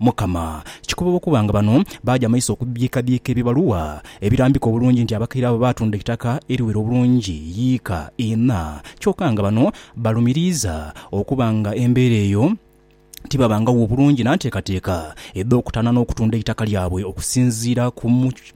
Mukama, kikoba okuba nga bano baaja maiso okubiikabiika ebibaluwa ebirambika obulungi nti abakaire abo baatunda eitaka eriwera obulungi yiika ina, kyoka nga bano balumiriiza okuba nga embeera eyo tibabangagho bulungi na nteekateeka edh'okutaana n'okutunda eitaka lyabwe okusinziira ku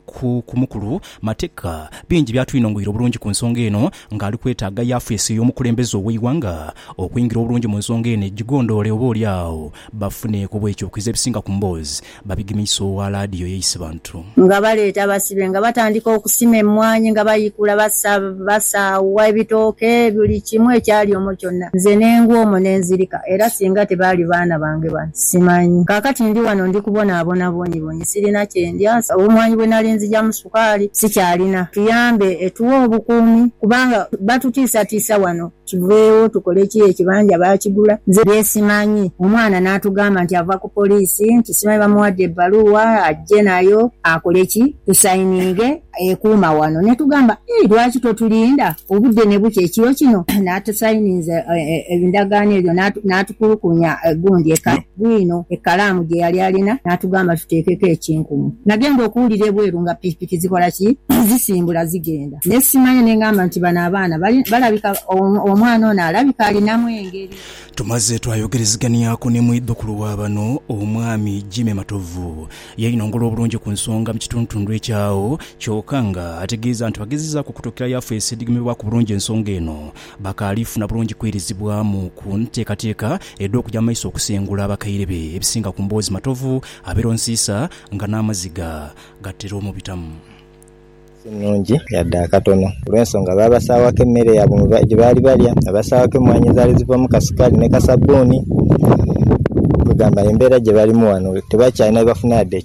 ku ku mukulu mateka bingi byatwinongoira obulungi ku nsonga eno nga ali kwetaaga yafesi ey'omukulembeze ow'eighanga okwingira obulungi mu nsonga eno egigondoole oba oli agho bafune ku bwekyokize ebisinga ku mboozi babigemeise owa laadiyo ya Isibantu. Nga baleeta abasibe nga batandika okusima emmwanyi nga baikula basa basaawa ebitooke buli kimu ekyali omwo kyonna nze ne ngwa omwo ne nzirika era singa tebaali baana bange bano simanyi. Kaakati ndi wano ndi kubonaabona bwonyibonyi. nti sirina kye ndya, nsaba omwani bwe nali nzijamu sukaali sikyalina, tuyambe etuwe obukuumi kubanga batutiisatiisa wano. Kiveewo tukole ki ekibanja baakigula nze bye simanyi. Omwana n'atugamba nti ava ku poliisi nti simanyi bamuwadde ebbaluwa ajje nayo akole ki tusayininge ekuuma wano ne tugamba ii lwaki totulinda obudde ne bukya ekiro kino? N'atusayininza endagaano eyo n'atukulukunya gundi e Kano. bwino ekkalaamu gye yali alina n'atugamba tuteekeko ekinkumu. Nagenda okuwulira ebweru nga pikipiki zikola ki? Zisimbula zigenda. Ne simanya ne ngamba nti bano abaana bali, balabika, omwana ono alabika alinamu engeri. Tumaze twayogereziganiaku ni mwidhukulu wa bano, Omwami Jimmy Matovu. Yeinongola obulungi ku nsonga mu kituntundu ekyo agho, kyoka nga ategeeza nti bwagezezaaku okutuukirayo afeesi edhigemebwaku bulungi ensonga eno, Bakaali funa bulungi kwirizibwamu ku nteekateeka edh'okuja mu maiso okusengula abakaire be ebisinga ku mboozi Matovu abeera onsiisa nga n'amaziga gatera omubitamu. Si nnhungi yadde akatono olw'ensonga baabasaawako emmere yaabwe gye baali balya, baabasaawako emmwaanyi ezaali zivaamu ka sukaali ni ka sabbuuni. Kwegamba embeera gye balimu ghano tebakyalina bye bafuna yadde.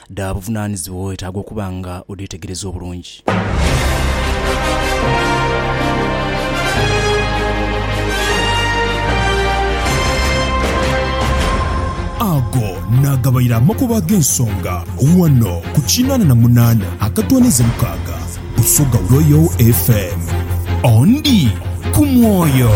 dha buvunaanizibwa weetaaga okuba nga odheetegereza obulungi. Ago naagabaire amakubo ag'ensonga ghano ku kinaana na munaana akatoonheze mukaaga. Busoga Royal FM. Ondi ku mwoyo.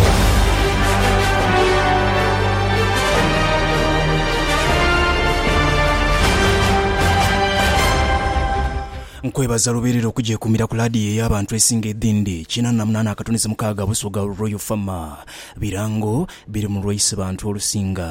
Nkwebaza lubeerera okugyekumira ku laadiyo ey'abantu esinga edhindi. Kinaana na munaana akatuni ze mukaaga Busoga Royal FM. Birango biri mu lwaise bantu olusinga.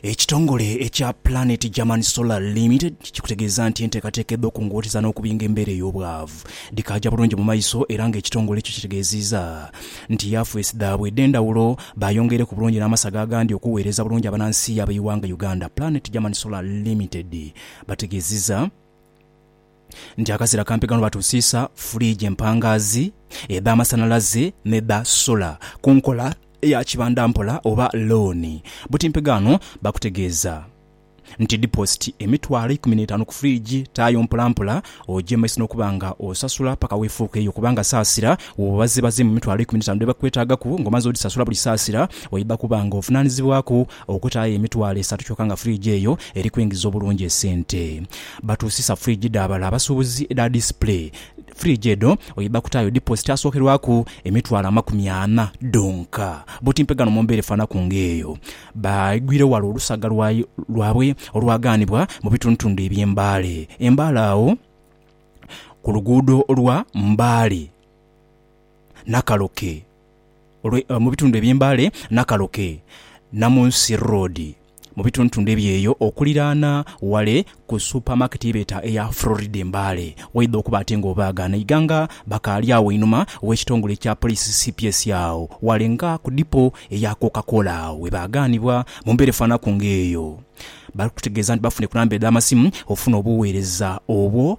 Ekitongole ekya Planet German Solar Limited kikutegeeza nti enteekateeka edh'okungooteza n'okubinga embeera ey'obwavu dhikaaja bulungi mu maiso era nga ekitongole ekyo kitegeeziiza nti yafeesi dhaabwe edh'endhawulo baayongeire ku bulungi n'amasaga agandi okuweereza bulungi abanansi ab'eighanga Uganda. Planet German Solar Limited bategeeziza. nti akazira kampiganwa batuusiisa furiigi empangaazi, edh'amasanhalaze n'edha sola ku nkola ya kibanda mpola oba looni. Butimpiganwa bakutegeeza nti dipoositi emitwalo eikumi n'etaanu ku furiigi taayo mpolampola ogyemaiso n'okuba nga osasula paka weefuuka eyo kubanga saasira woba obazeebazeemu emitwalo eikumi n'etaanu dhe bakwetaagaku ng'omaze odhisasula buli saasira oidha kuba ng'ovunaanizibwaku okutaayo emitwalo esatu kyokka nga furiigi eyo eri kwingiza obulungi esente Batuusisa fridge dha bala abasuubuzi edha display. Fridge edho oidha kutaayo deposit asookerwaku emitwalo amakumi ana dhonka. Buti mpegano mu mbeera efaanaku ng'eyo, baigwire wala olusaga lwabwe olwagaanibwa mu bitundutundu eby'e Mbale e Mbale agho ku luguudo lwa Mbale. Nakaloke, olwe, mu bitundu eby'e Mbale, Nakaloke, Namunsi Road, mu bitundutundu eby'eyo okuliraana wale ku supamaketi ye beeta eya Florida e Mbale, waidha okuba ate nga obaaga n'eiga nga bakaali agho einhuma w'ekitongole ekya Poliisi cps agho wale nga ku dipo eya Coca-Cola agho we baagaanibwa. Mu mbeera efaanaku ng'eyo, bali kututegeeza nti bafunhe ku namba edh'amasimu okufuna obugheereza obwo.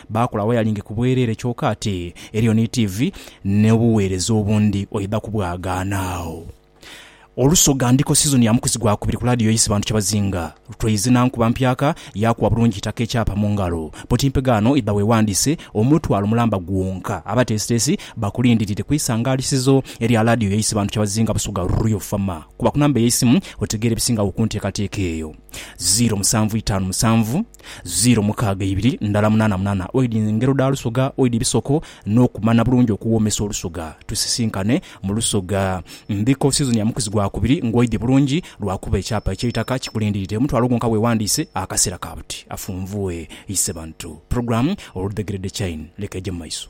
Baakola wayalingi ku bwereere kyoka ate eriyo ni tiivi n'obuweereza obundi oidha kubwagaana agho. Olusoga Ndiko sizoni ya mukuzi gwa kubiri ku laadiyo y'isi bantu kyebazinga. Lutweize na nkuba mpyaka yaakuwa bulungi itaka ekyapa mu ngalo. Bwoti mpegaano idha weewandiise omutwalo mulamba gwonka. Abateesiteesi bakulindirire ku isangaalisizo erya laadiyo y'isi bantu kyebazinga Busoga Royal Fama. Kuba ku namba ey'eisimu otegeere ebisingagho ku nteekateeka eyo, ziiro musanvu itaanu musanvu, Ziro mukaaga ibiri ndala munaana munaana oidhi ngero dha lusoga oidhi bisoko n'okumana bulungi okuwoomesa olusoga. Tusisinkane mu lusoga Mbiko sizoni ya mukuzi gwa kubiri ng'oidhi bulungi lwakuba ekyapa eky'eitaka kikulindiridde omutwalo gwonka weewandiise akaseera ka buti. Afunvue Isebantu Pulogulaamu oludhegeredde Chain leka eje mu maiso.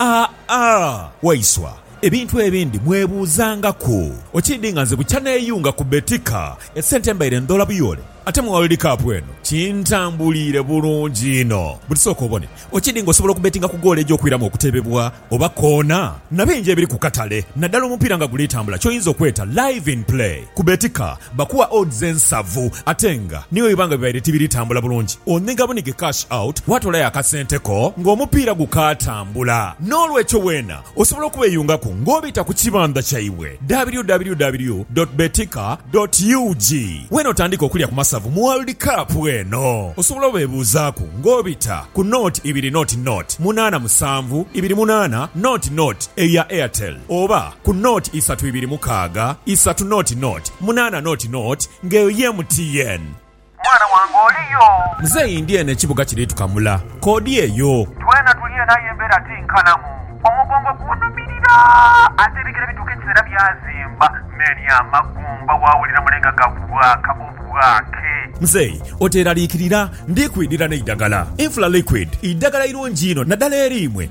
Aa Waiswa, ebintu ebindi mwebuuzangaku. Okiidhi nga nze bukya neeyunga ku Betika, esente mbaire ndhoola buyoole, ate mu World Cup eno kintambuliire bulungi inho. Buti sooka obone, okiidhi nga osobola okubetinga ku goolo egy'okwiramu okutebebwa oba koona? Na bingi ebiri ku katale, naddala omupiira nga guli tambula, ky'oyinza okweta Live in Play. Ku betika bakuwa odds ensavu ate nga ni bwe biba nga bibaire tibiri tambula bulungi, onhiga bunhige cash out waatoolayo akasente ko ng'omupiira gukaatambula. N'olwekyo weena osobola okubeeyungaku ng'obita ku kibandha kyaibwe, www dot betika dot ug. Weena otandike okulya ku masavu mu World Cup eno. Osobola obeebuuzaaku ng'obita ku nought ibiri nought nought munaana musanvu ibiri munaana nought nought eyo ya Airtel oba. ku nought isatu ibiri mukaaga isatu nought nought munaana nought nought nga eyo ye MTN. Mwana wange oli yo? Muzeeyi ndi eno ekibuga kiri tukamula. Koodi eyo. Twena tuli eno aye embeera ti nkalamu. Omugongo gunhumirira ate ebigere bituuka ekiseera byazimba mmeeri amagumba waawulira mule nga gabwaaka obwaake. Muzeeyi oteeraliikirira, ndi kwidhira n'eidagala. Infra Liquid idagala irungi inho naddala eriimwe